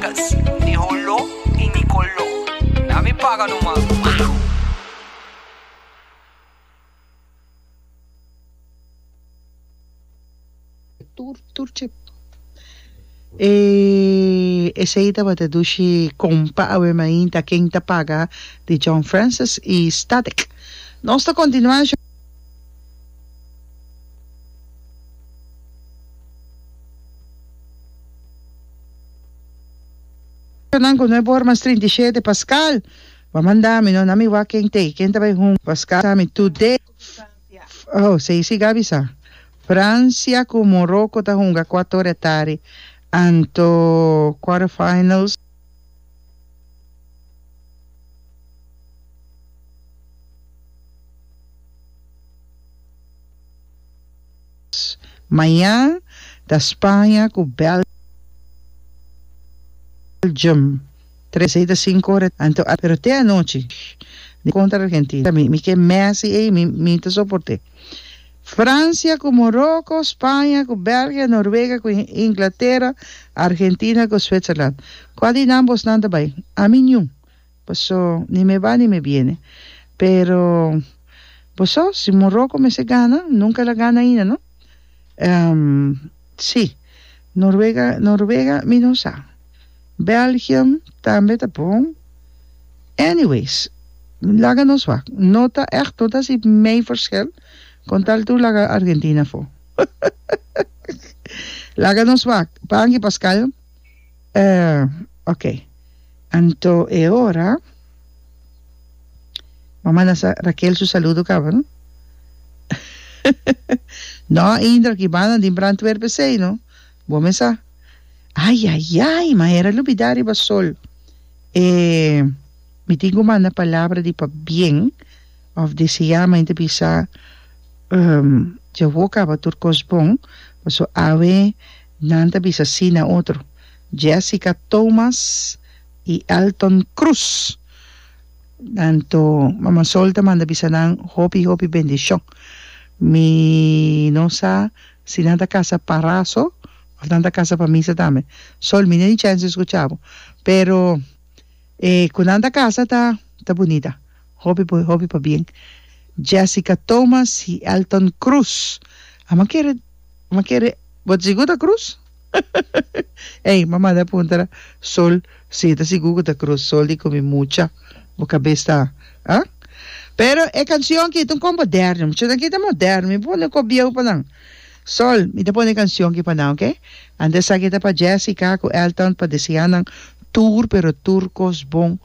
Lucas, ni Holó i ni Coló. Na mi paga no mas. Wow! Tur tur chip. E esei tabata dushi kompa awe mainta ken ta paga di John Francis i Static. Nos ta kontinuá shon. Nan ku no e bor mas trinta i shete paskal Bo manda mi no na mi wak ken tei ken ta bai hunga paskal sa mi tu de oh sei si Gabi sa Francia ku Moroko ta hunga kuato ora e tardi anto quarter finals Maña ta Spaña ku Belgium tres esei ta sinku ora di tardi pero te anochi di kontra Argentina mi ke Messi ei mi ta soport'é Francia ku Moroko Spaña ku Belgia Noruega ku Inglatera Argentina ku Switzerland kua di nan bosnan ta bai ami niun. Paso ni me ba ni me biene. Pero boso si Morocco mester gana nunca el a gana ainda no? Ehm si Noruega Noruega mi no sa Belgium tambe ta bon anyways laga nos wak no ta echt no ta si mei verschil con tal tur laga Argentina for laga nos wak Panky Pascal. Eh, ok. Anto e ora Bo manda sa Raquel su saludo caba, no? No, Indra, ki banda di Brantwerp esey, no? Bo me sa. Ay, ay, ay, ma era lubida riba sol. Eh, mi tin cu manda palabra di pa bien of desea, ma enta bisa, ehm, dja wou caba tur cos bon, paso awe, Nan ta bisa sí na otro, Jessica Thomas i Elton Cruz. Anto Mama Sol ta manda bisa nan hopi hopi bendishon. Mi no sa si nan ta kasa pa raso òf nan ta kasa pa misa tambe. Sol, mi no tin chèns di skucha bo, pero. E cu nan ta casa ta ta bunita. Hopi por hopi pa bien. Jessica Thomas y Elton Cruz. A ma kere ma kere bo ta sigur ta Cruz? Ey ma manda puntara Sol si e ta sigur cu ta Cruz. Sol di cu mi mucha bo cabes ta ah. Pero e cancion aki ta un con moderno. Muchanan aki ta moderno. Mi pone cobieu pa nan. Sol, mi ta pone cancion aki pa nan ok. Ante esaki ta pa Jessica cu Elton pa desea nan tur pero tur cos bon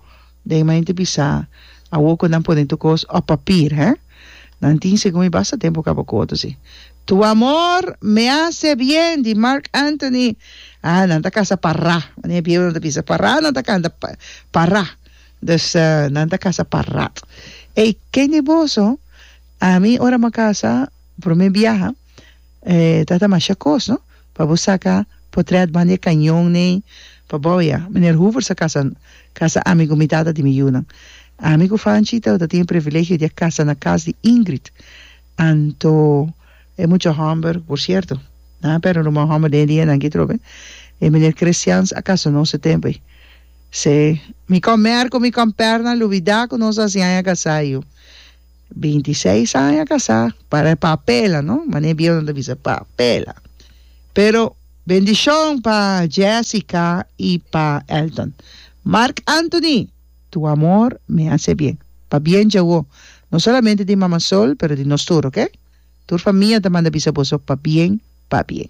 den mente bisa awo cu nan pone tur cos op papir he. Nan tin segun mi basta tempo caba cu otro si. Tu amor me hace bien di Marc Anthony ah nan ta casa pa ra mane e biebel nan ta bisa pa ra nan ta canta pa ra dus nan ta casa pa rat ey kende boso ami ora mi a casa Prome biaha ta ta masha kos no pa bo saka potrèt banda e kañon nei pa bo ya miner Hoover sa kasa kasa ami ku mi tata di mi yunan ami ku Fanchito ta tin e privilegio dia kasa na kas di Ingrid anto e mucha hòmber por sierto nan a pèrdè un ruman hòmber den e dianan ki trobe e miner Christians a kasa nos e tempu ei se mi kòm Mèrk ku mi kòm Pèrna lubidá ku nos a siña a kasá yu. Binti seis aña kasá, para e papela no, manera bien nan ta bisa papela. Pero bendishon pa Jessica i pa Elton. Marc Anthony, tu amor mi hase bien. Pabien dja wou, no solamente di Mama Sol pero di nos tur, ok? Tur famia ta manda bisa boso pabien, pabien.